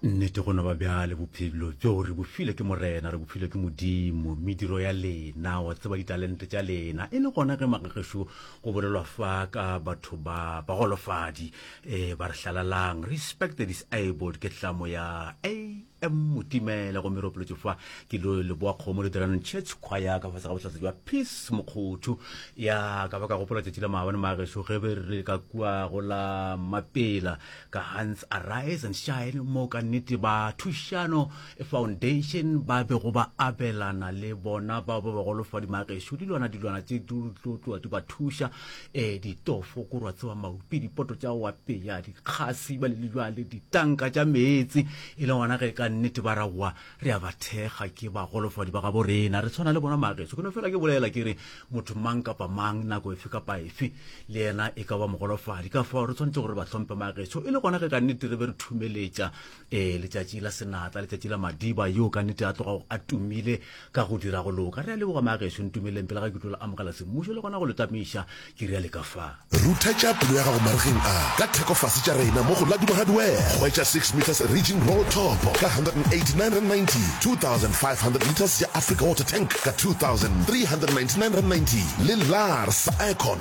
nnete go no ba bjale bophelo bjo re bofile ke morena re bofile ke modimo mediro ya lena wa tseba ditalente tša lena e le gona ge magagešo go bolelwa fa ka batho ba bagolofadi um ba re hlalalang respect the disabled ke tlamo ya a motimela go meropolotso fa ke lo leboa kgomo le diranong church choir ka fase ga botlhatsa jwa peace mokgotho ya ka ba ka gopola tšatši la maabane mageso ge be re ka kua go la mapela ka hans arise and shine mo ka nnete ba thušano foundation ba bego ba abelana le bona bao ba bagolofadi mageso dilwana dilwana tse di tlo tloa di ba thuša e ditofo, go rwatsewa maupi, dipoto tša go apeya, dikgasi, bale le jwale, ditanka tša meetse. E le gona ge ka nnete ba ra wa re a ba thekga, ke bagolofadi ba gabo rena, re tshwana le bona mageso. Ke no fela ke bolela ke re motho mang kapa mang, nako efe kapa efe, le yena e ka ba mogolofadi. Ka fao re tshwanetse gore re ba hlompe mageso, e le gona ge ka nnete re be re thumeletša ee letšatši la senatla letšatši la madiba yo ka nnete a tloga a tumile ka go dira go loka re a leboga maagešo ntumeleng pele ga ke tlo le amogela semmušo le gona go le tamiša ke rea le ka fa rutha tša pelo ya gago marigeng a ka thekofase tša rena mo go laduba hardware hwetša 6 meters region roll top ka 189.90 2500 liters ya africa water tank ka 2399.90 le lars icon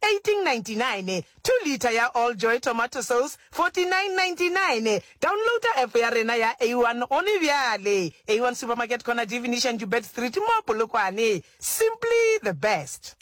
1899 2 litre ya All Joy Tomato Sauce 4999 Downloada app ya rena ya A1 gone bjale A1 Supermarket Corner Di Venetian Joubert Street mo Polokwane Simply the best.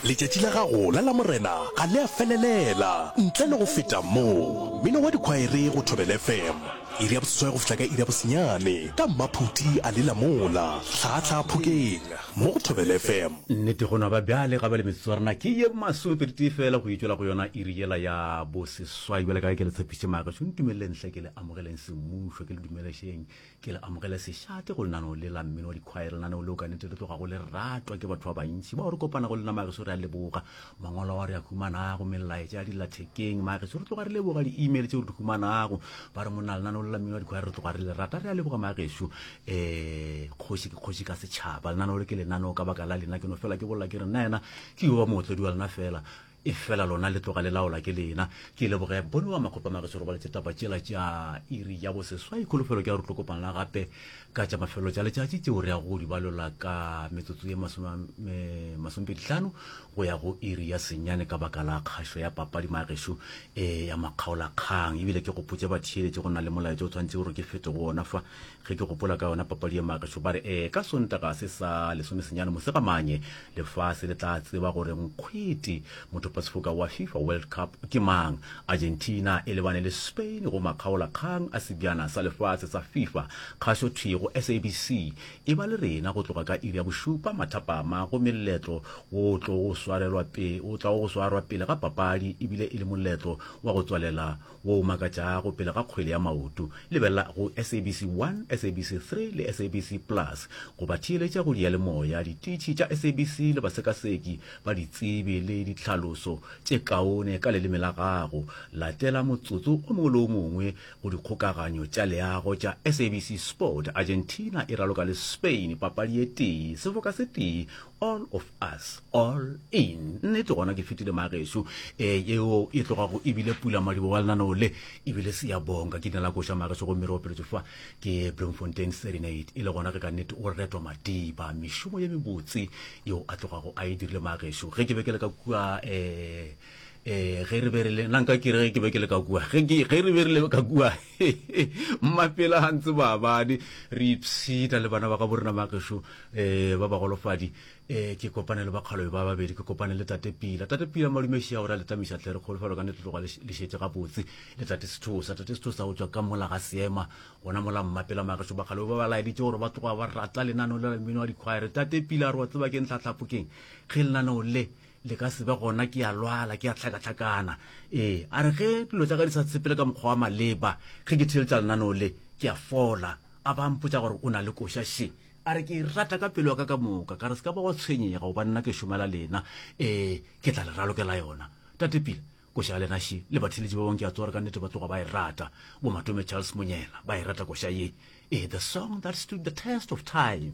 Letšatši la gago la Lamorena ga le a felelela ntle le go feta mo. Mmino wa dikhwaere go Thobela FM, iri ya boseswai go fihla ka iri ya bosenyane, ka mmaphuti a lela mola, hlaga hlaga phokeng. mo go Thobela FM. Nnete gona ba bjale ga ba le metsotso ya rena ke ye masometee fela go itšwela go yona iri yela ya boseswai bjale ka ge ke le tshepiše magašo ntumelele nhle ke le amogeleng semmušo ke le dumelešeng ke le amogele sešate go lenaneo le la mmino wa dikhwaere lenaneo leo ka nete le tlogago le ratwa ke batho ba bantši bao re kopanago le lena magašo re a leboga mangwalo ao re a humanago melaetša ya dilathekeng mageso re tloga re leboga di-email tse re di humanago ba re monna lenaneo le lamino wa dikgwera re tloga re le rata re a leboga mageso um eh, kgoši ke kgoši ka setšhaba lenaneo le ke lenaneo ka baka la lena ke no fela ke bolela ke re nna yena ke yo ba mootlodi wa lena fela e fela lona le tloga le laola ke lena ke leboge bone wa makgopa mageso robaletse taba tšela tša iri ya boseswai kholofelo ke ya re tlo kopana gape ka tša mafelo tša letšatši tšeo re ya go di balola ka metsotso ye masomepedihlano go ya go iri ya senyane ka baka la kgašo ya papadi magešo e ya makgaolakgang ebile ke gopotse batheeletše go na le molaetša o tshwanetse gore ke fete go ona fa ge ke gopola ka yona papadi ye magešo ba re ee ka sontaga se sa lesomesenyane mosegamanye Lefase le tla tseba gore nkgwete mothopasefoka wa Fifa World Cup ke mang. Argentina e lebane le Spain go makgaolakgang a Sebjana sa Lefase sa Fifa. Kgašo thwi go SABC. E ba le rena go tloga ka iri ya bošupa mathapama gomme lletlo wo o tlogo go swarelwa pele o tlago go swarwa pele ga papadi e bile e le moletlo wa go tswalela wo o makatšago pele ga kgwele ya maoto. Lebelela go SABC 1, SABC 3 le SABC Plus go ba theeletša go diyalemoya, dititšhi tša SABC le basekaseki ba ditsebi le ditlhaloso tše kaone ka leleme la gago. Latela motsotso o mongwe le o mongwe go dikgokaganyo tša leago tša SABC Sport. Argentina e raloka le Spain papadi e tee, sefoka se tee all of us all in nnete gona ke fetile mageso e yeo e tlogago ebile pula madibo wa lenaneo le ebile se ya bonka ke dina la koša mageso gomme re opeletso fa ke bloemfontein serenade e le gona ge ka nnete o retwa madiba mešomo ye mebotse yeo a tlogago a e dirile mageso ge ke be ke le ka kua um um ge re be re le nanka ke re ge ke be ke le ka kua ge re be re le ka kua mmapela ga ntse baabane re ipshita le bana ba ga borena magešo um eh, ba bagolofadi um eh, ke kopane le bakgalobe ba babedi ke kopane le tate pila tate pila madumeši ya gore a letamisa tlere kgolo felo ka nete tloga le šetse gabotse le tate sethosa tate sethosa go tswa ka mola ga seema gona mola mmapela magešo bakgalobe ba ba laeditse gore ba tloga ba rata lenaneo le la mmino wa dikgwaere tate pila a re wa tseba ke ntlhatlhapokeng ge lenaneo le le ka se be gona ke a lwala ke a tlhakatlhakana ee a re ge dilo tsa ka di sa tshepele ka mokgwa wa maleba ge ke theletša lenaneo le ke a fola a ba mpotsa gore o na le koša she a re ke e rata ka pelo ya ka ka moka ka re se ka ba wa tshwenyega goba nna ke šomela lena ee ke tla le ralokela yona tate pila koša ya lena she le batheletši ba bangwe ke a tsore ka nnete ba tloga ba e rata bomatome charles monyela ba e rata koša ye ee the song that stood the test of time